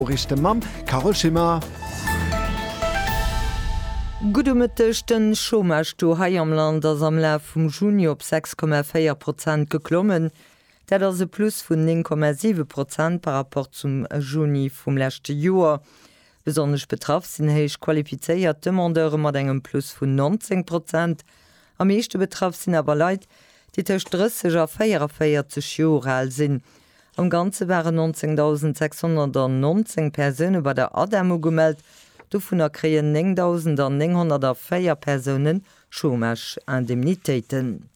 Noriichte mam Carole Schimmer. Gudde Mëtteg, Den Chômage-Taux hei am Land ass am Laf vum Juni op 6,4 Prozent geklommen. Dat ass e Plus vun 9,7 Prozent par rapport zum Juni vum leschte Joer. Besonnesch betraff sinn héich qualifizéiert Demandeure mat engem Plus vun 19 Prozent. Am meeschte betraff sinn awer Leit, déi tëscht 30 a 44 Joer al sinn. Am Ganze waren 19.619 Persoune bei der ADEM ugemellt, dovunner kréien 9.904 Persoune Chômage-Indemnitéiten.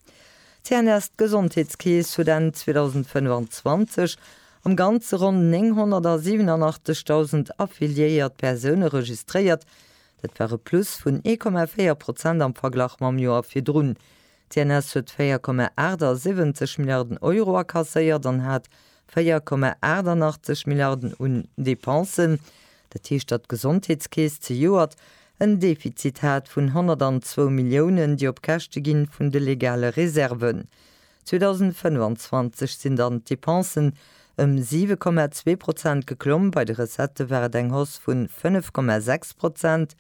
D'CNS, d'Gesondheetskeess, huet Enn 2025 am Ganze ronn 987.000 affiliéiert Persoune registréiert, dat war e Plus vun 1,4 Prozent am Verglach mam Joer virdrun, D'CNS huet 4,78 Milliarden Euro akasséiert an hat 4,88 Milliarden un Dépensen. Dat heescht, datt d'Gesondheetskeess zejoert en Defizit hat vun 102 Milliounen, déi op Käschte gi vun de legale Reserven. 2025 sinn dann d'Depensen ëm 7,2 Prozent geklomm, bei de Recettë war et eng Hausse vun 5,6 Prozent.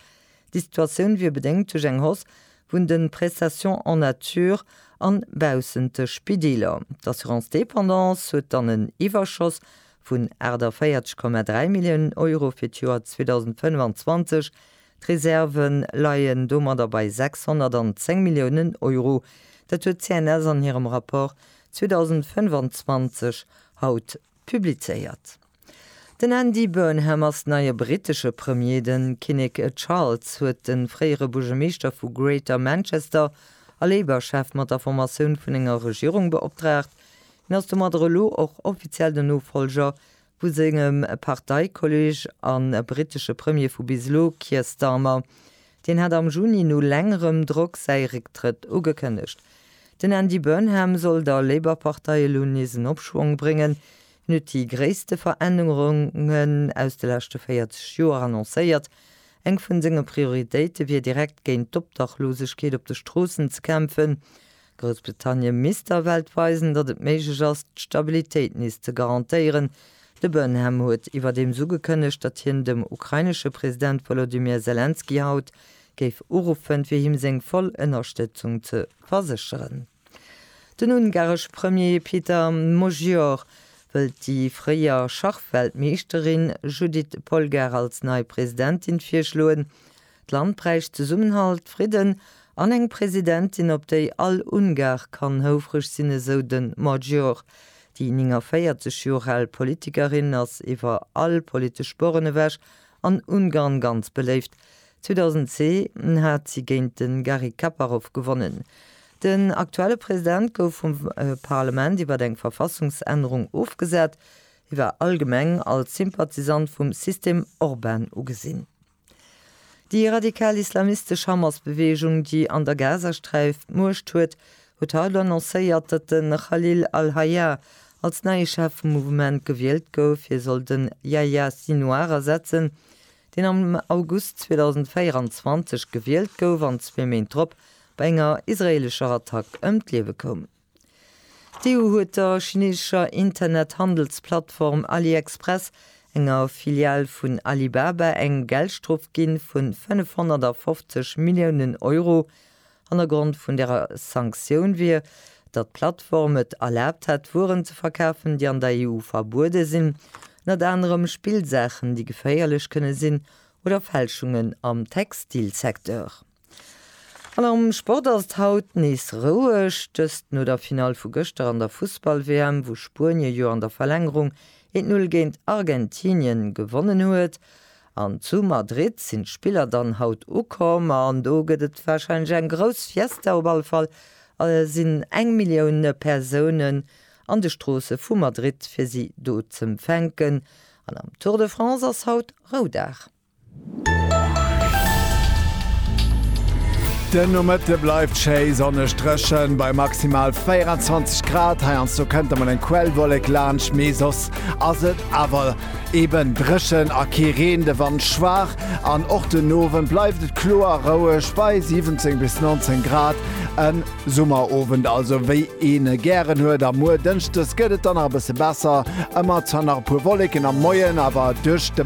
Déi Situatioun wier bedéngt duerch eng Hausse vun de Prestations en nature a baussent de Spideeler. D'Assurance dépendance huet dann en Iwwerschoss vun 48,3 Milliounen Euro fir d'Joer 2025. D'Reserve leien domadder bei 610 Milliounen Euro. Dat huet d'CNS an hirem Rapport 2025 haut publizéiert. Den Andy Burnham ass den neie brittesche Premier. De Kinnek Charles huet de fréiere Buergermeeschter vu Greater Manchester a Labour-Chef mat der Formatioun vun enger Regierung beoptraagt. Hien ass domadder elo och offiziell den Nofollger vu sengem Parteikolleeg a brittesche Premier vu bis elo, Keir Starmer. Deen hat am Juni no längerem Drock säi Récktrëtt ugekënnegt. Den Andy Burnham soll der Labour-Partei elo nees en Opschwong bréngen, En huet déi gréisste Verännerungen aus de leschte 40 Joer annoncéiert. Eng vun senge Prioritéite wier direkt géint d'Obdachlosegkeet op de Stroossen ze kämpfen. Groussbritannien misst der Welt weisen, datt et méiglech ass, d'Stabilitéit nees ze garantéieren. De Burnham huet iwwerdeems ugekënnegt, datt hien dem ukrainesche President Wolodymyr Selenskyj haut géif uruffen, fir him seng voll Ënnerstëtzung ze versécheren. Den ungaresche Premier Peter Magyar wëllt déi fréier Schachweltmeeschterin Judit Polgár als nei Presidentin virschloen. D'Land bräicht Zesummenhalt, Fridden an eng Presidentin, op déi all Ungar kann houfreg sinn, esou de Magyar. Déi 49 Joer al Politikerin ass iwwer all politesch Borren ewech an Ungarn ganz beléift. 2010 hat si géint de Garry Kaparov gewonnen. Den aktuelle President gouf vum Parlement iwwer eng Verfassungsännerung ofgesat. Hie war allgemeng als Sympathisant vum System Orban ugesinn. Déi radikal islamistesch Hamas-Beweegung, déi an der Gazasträif d'Muecht huet, huet haut annoncéiert, datt de Khalil al-Hayya als neie Chef vum Mouvement gewielt gouf. Hie soll de Yahya Sinouar ersetzen, deen am August 2024 gewielt gouf an zwee Méint drop bei enger israeelescher Attack ëm d'Liewe koum. D'EU huet der chineesescher Internethandelsplattform AliExpress, enger Filial vun Alibaba, eng Geldstrof ginn vun 550 Milliounen Euro, Hannergrond vun der Sanktioun wier, datt d'Plattform et erlaabt hätt, Wueren ze verkafen, déi an der EU verbuede sinn, ënnert anerem Spillsaachen, déi geféierlech kënne sinn, oder Fälschungen am Textilsecteur. An am Sport ass et haut nees roueg, dëst no der Finall vu gëschter an der Fussball-WM, wou Spuenie jo an der Verlängerung een d'Null géint Argentinien gewonnen huet. An zu Madrid sinn d'Spiller dann haut ukomm an do gëtt et warscheinlech eng grouss Fiesta. Op alle Fall sinn eng Millioun Persounen an de Stroosse vu Madrid fir si do z'empfänken. An am Tour de France ass haut Roudag. Den Nomëtte bleift schéi sonneg dréchen, bei maximal 24 Grad. Heiansdo kënnt emol eng Quellwollek laanscht, mee soss ass et awer Eben dréchen a kee Reen, de Wand schwaach an och den Owend bleift et kloer a roueg bei 17 bis 19 Grad. E Summerowend also, wéi een e gären huet. A muer Dënschdes gëtt et dann nach e bësse besser, ëmmer zwar nach e puer Wolleken am Moien, awer duerch de.